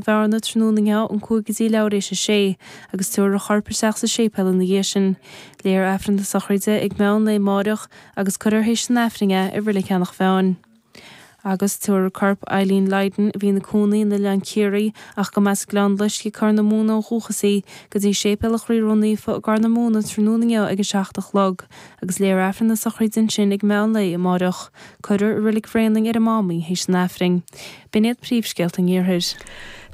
bhearna tráthnóna ón cúig go dtí leathuair théis a sé, agus tabharfar a chorp isteach sa séipéal ina dhiaidh sin. Léifear Aifreann na sochraide ag meán lae amáireach agus cuirfear théis an Aifrinn é i Reilig Eanach Mheáin. Agus tabharfar corp Eileen Lydon, a bhí ina cónaí in Oileán Ciarraí ach go mba as Gleann Loisc i gCorr na Móna ó dhúchas í, go dtí séipéal an Chroí Ró-Naofa i gCorr na Móna tráthnóna inniu ag a seacht a chlog. agus léifear Aifreann na sochraide ansin ag meán lae amáireach. Cuirfear i Reilig Bhraonáin ar an Mám í théis an Aifrinn. B'in iad príomhscéalta an Iarthair.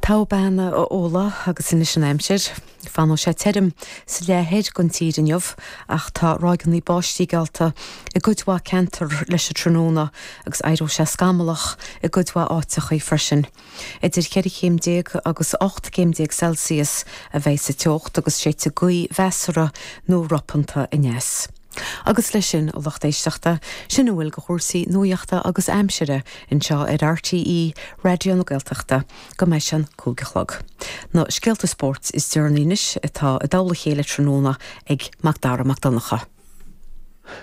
Tá go maith, a Nuala, agus anois an aimsir. Fanfaidh sé tirim sa leath thoir den tír inniu ach tá ráigeanna báistí geallta i gcuid mhaith ceantar leis an tráthnóna agus éireoidh sé scamallach i gcuid mhaith áiteachaí freisin. Idir cheithre chéim déag agus ocht gcéim déag Celsius a bheidh sa teocht agus séidfidh gaoth mheasartha nó ropanta aneas. Agus leis sin, a lucht éisteachta, sin a bhfuil de chúrsaí nuaíochta agus aimsire anseo ar RTÉ Raidió na Gaeltachta go mbeidh sé an cúig a chlog. Na scéalta spóirt is deireanaí anois atá i dtoll a chéile tráthnóna ag Macdara Mac Donncha.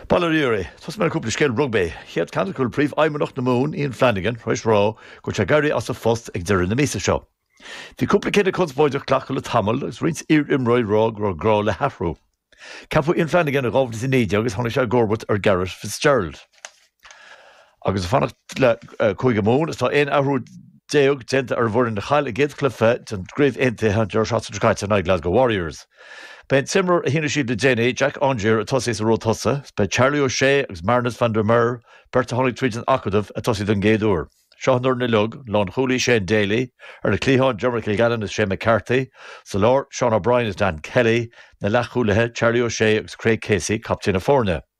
Bail ó Dhia oraibh. Tosóidh mé le cúpla scéal rugbaí. Chéad cheann go bhfuil Príomhfheidhmeannach na Mumhan, Ian Flanagan, tar éis rá go bhfuil sé ag éirí as a phost ag deireadh na míosa seo. Bhí cúpla cinneadh conspóideach glactha le tamall agus roinnt iar-imreoirí ag rá go raibh gá le hathrú. Ceapadh Ian Flanagan in 2019 agus tháinig sé i gcomharbacht ar Garret Fitzgerald. Agus ag fanacht le Cúige Mumhan, is tá 11 athrú déanta ar an bhfoireann a chaill a gcéad chluiche den gCraobh Aontaithe an deireadh seachtaine seo caite in aghaidh Glasgow Warriors. Beidh an t-imreoir a shínigh siad le déanaí, Jack Aungier, ag tosaí sa ró tosaigh agus beidh Charlie O'Shea agus Marnus van der Merwe, beirt a tháinig tríd an acadamh, ag tosaí don gcéad uair. Seo an fhoireann uilig, lánchúlaí Shane Daly, ar na cliatháin Diarmuid Kilgallen agus Shay McCarthy, sa lár Seán O'Brien agus Dan Kelly, na leathchúlaithe Charlie O'Shea agus Craig Casey, captaen na foirne.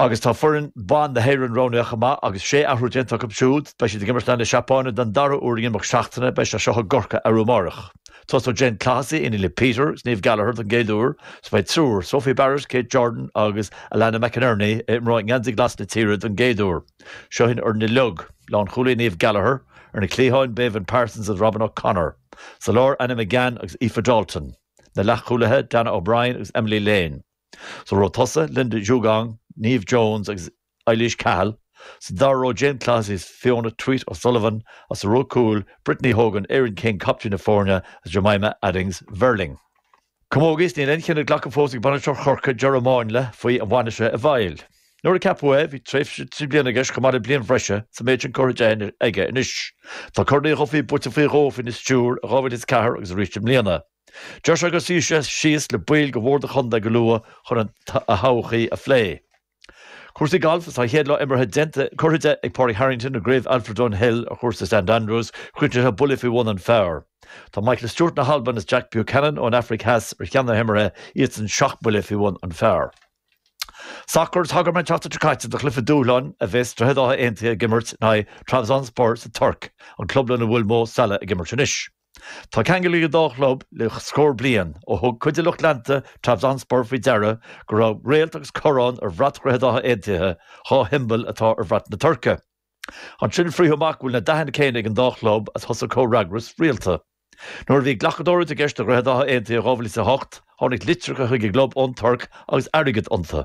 agus tá foireann ban na hÉireann roghnaithe chomh maith agus sé athrú déanta acu siúd. Beidh siad ag imirt in aghaidh na Seapáine don dara uair in imeacht seachtaine, beidh siad anseo i gCorcaigh arú amáireach. Tosóidh Jane Clohessy, iníon le Peter is Niamh Gallagher, don gcéad uair is beidh triúr, Sophie Barrett, Kate Jordan agus Alana McInerney, a imreoidh i ngeansaí glas na tíre don gcéad uair. Seo í an fhoireann uilig. Lánchúlaí, Niamh Gallagher, Ar na cliatháin, Béibhinn Parsons is Robyn O'Connor. Sa lár, Anna McGann agus Aoife Dalton. Na leathchúlaithe, Dannah O'Brien agus Emily Lane. Sa ró tosaigh, Linda Djougang, Neve Jones agus Eilís Cahill, sa dara ró, Jane Clohessy is Fiona Tuite O'Sullivan, agus sa ró cúil, Brittany Hogan, Erin King, captaen na foirne, agus Jemima Adams Verling. Camógaíocht is níl aon chinneadh glactha fós ag bainisteoir Chorcaí Ger Manley faoi an bhfanfaidh sé i bhfeighil. Nuair a ceapadh é, bhí tréimhse trí bliana aige chomh maith le bliain bhreise is an méid sin curtha de aige anois. Tá Corn Uí Dhubhthaigh buaite faoi dhó faoina stiúir i 2004 agus arís i mbliana. Deirtear go suífidh sé síos le baill Bhord an Chontae go luath chun an todhchaí a phlé. Cúrsaí Gailf Is tá a chéad dreas imeartha déanta curtha de ag Pádraig Harrington i gCraobh Alfred Dunhill ar Chúrsa St Andrews críochnaithe buille faoi bhun an phar. Tá Michael Stewart na hAlban is Jack Buchanan ón Afraic Theas ar cheann na himeartha, iadsan seacht mbuille faoi bhun an phar. Sacar Thagair mé an tseachtain seo caite do Chluiche Dúshláin a bheas Droichead Átha Aontaithe ag imirt in aghaidh Trabzonspor sa Tuirc, an club lena bhfuil Mo Salah ag imirt anois. Tá ceangal ag an dá chlub le scór bliain, ó thug cuid de lucht leanta Trabzonspor faoi deara go raibh réalt agus corrán ar bhrat Dhroichead Átha Aontaithe, dhá shiombail atá ar bhrat na Tuirce. Ansin frítheadh amach go bhfuil na dathanna céanna ag an dá chlub agus thosaigh comhfhreagras rialta. Nuair a bhí glacadóireacht i gceist do Dhroichead Átha Aontaithe in 2008, tháinig litreacha chuig an gclub ón Tuirc agus airgead iontu.